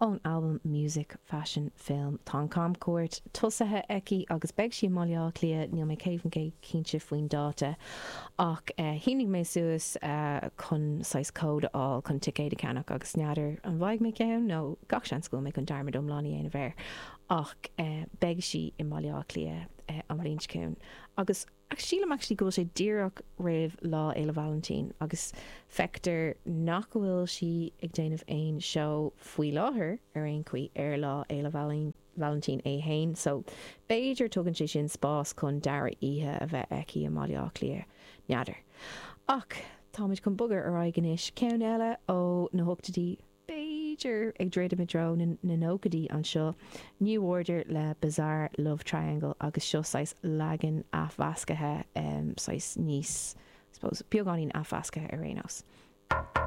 ón albam Music Fashion Film. Tá an camchuairt tosaithe aici agus beidh sí i mBaile Átha Cliath, níl mé 100% cinnte faoin dáta, ach shínigh mé suas chun saghas cód a fháil chun ticéad a cheannach agus n'fheadar an bhfaighidh mé ceann nó gach seans go bhfuil mé chun dearmad iomlán a dhéanamh air, ach beidh sí i mBaile Átha Cliath an bhliain seo chugainn agus. Ach sílim actually go bhfuil sé díreach roimh Lá Fhéile Vailintín agus feictear nach go bhfuil sí ag déanamh aon seó faoi láthair ar aon chaoi ar Lá Fhéile Vailintín é fhéin so b'fhéidir tugann sé sin spás chun dara oíche a bheith aici i mBaile Átha Cliath, n'fheadar. Ach táimid chun bogadh ar aghaidh anois, ceann eile ó na hochtaidí. b'fhéidir, ag druidim i dtreo na nóchaidí anseo, New Order le Bizarre Love Triangle agus seo saghas leagan athmheascaithe, saghas níos, beagáinín athmheascaithe ar aon nós.